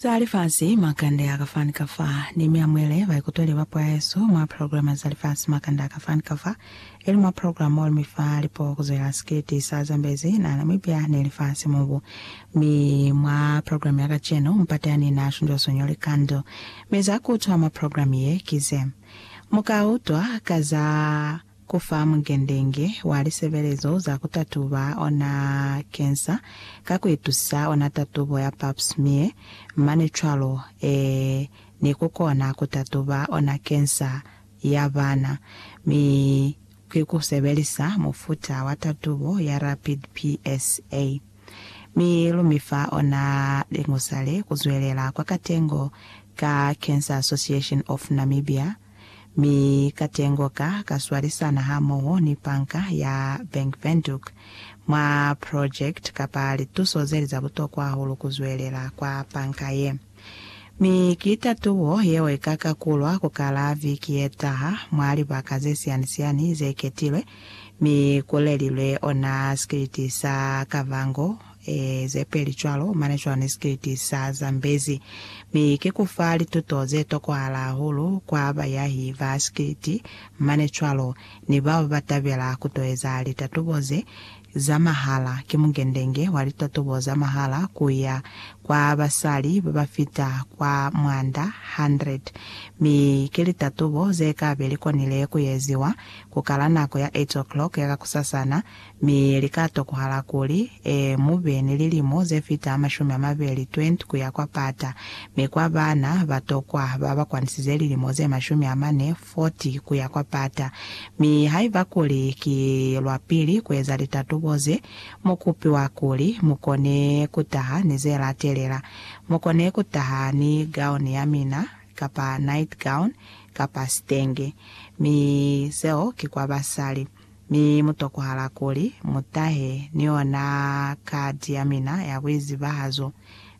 Za Lifasi, Makande a ka fa ni ka fa. Ni mi amuele baikutweli ba puo ya hesu mwa programa Za Lifasi, Makande a ka fa ni ka fa, ili mwa programa mo lu mi fa lipuo ku zwelela sikiliti sa Zambezi na Namibia ni Lifasi Mubu. Mi mwa programa ya kacenu, mupateani na shunzwa sonyo likando. Mi za ku utwa mwa programa ye ki ze mu ka utwa ka za. Ku fa mungendenge wa lisebelezo za ku tatuba ona kensa ka ku itusa ona tatubo ya Pap smear mane cwalo, ee, ni ku kona ku tatuba ona kensa ya bana, mi ki ku sebelisa mufuta wa tatubo ya rapid PSA. Mi lu mi fa ona lingusa le, Ku zwelela kwa katengo ka Cancer Association of Namibia, Mi katengo ka ka swalisana hamoho ni Banka ya Bank Windhoek mwa project kapa lituso zeli za butokwa hahulu ku zwelela kwa banka ye. Mi ki tatubo yeo ika kakulwa ku kala viki yetaha mwa libaka ze siani-siani ze ketilwe, mi ku lelilwe ona sikiliti sa Kavango e, ze peli cwalo, mane cwani sikiliti sa zambezi. Mi ki ku fa lituto ze tokohala hahulu kwa bayahi ba sikiliti, mane cwalo, ni bao ba tabela ku to eza litatubo ze za mahala. Ki mungendenge wa litatubo za mahala ku ya kwa basali ba ba fita kwa mwanda 100. Mi ki litatubo ze ka be li konile ku eziwa ku kala nako ya 8:00 ya kakusasana, Mi lika tokohala kuli, e, mube ni lilimo ze fita mashumi amabeli, 20, kuya kwa pata. Mi kwa baana ba tokwa, ba ba kwanisize lilimo ze mashumi amane, 40, kuya kwa pata. Mi haiba kuli ki lwa pili kueza litatubo ze, mu kupiwa kuli mukone kutaha ni ze latelela. Mukone kutaha ni gown ya mina, kapa night gown, kapa sitenge. Mi seo ki kwa basali. Mi mu tokwahala kuli mu tahe ni yona kati ya mina ya buizibahazo.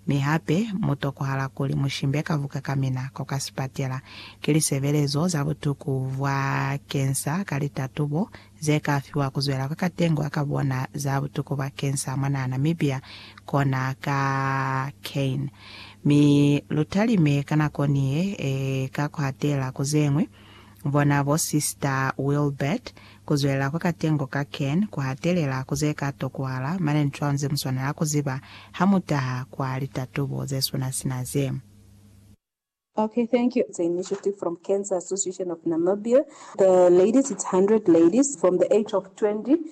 Mi hape mu tokwahala kuli mu shimbe ka buka ka mina ko ka sipatela. Ki lisebelezo za butuku bwa kensa ka litatubo ze ka fiwa ku zwela kwa katengo ya ka bona za butuku bwa kensa mwa naha Namibia kona ka Cain. Mi lu talime ka nako ni ye e ka ku hatela ku zeñwi Bona bo Sista Wilbert, Ku zwelela kwa katengo ka Cairn ku hatelela ku ze ka tokwahala, mane ncwaa ze mu swanela ku ziba ha mu taha kwa litatubo ze suna sina ze. Ok thank you. It's a initiative from Cancer Association of Namibia, the ladies it's 100 ladies from the age of 20.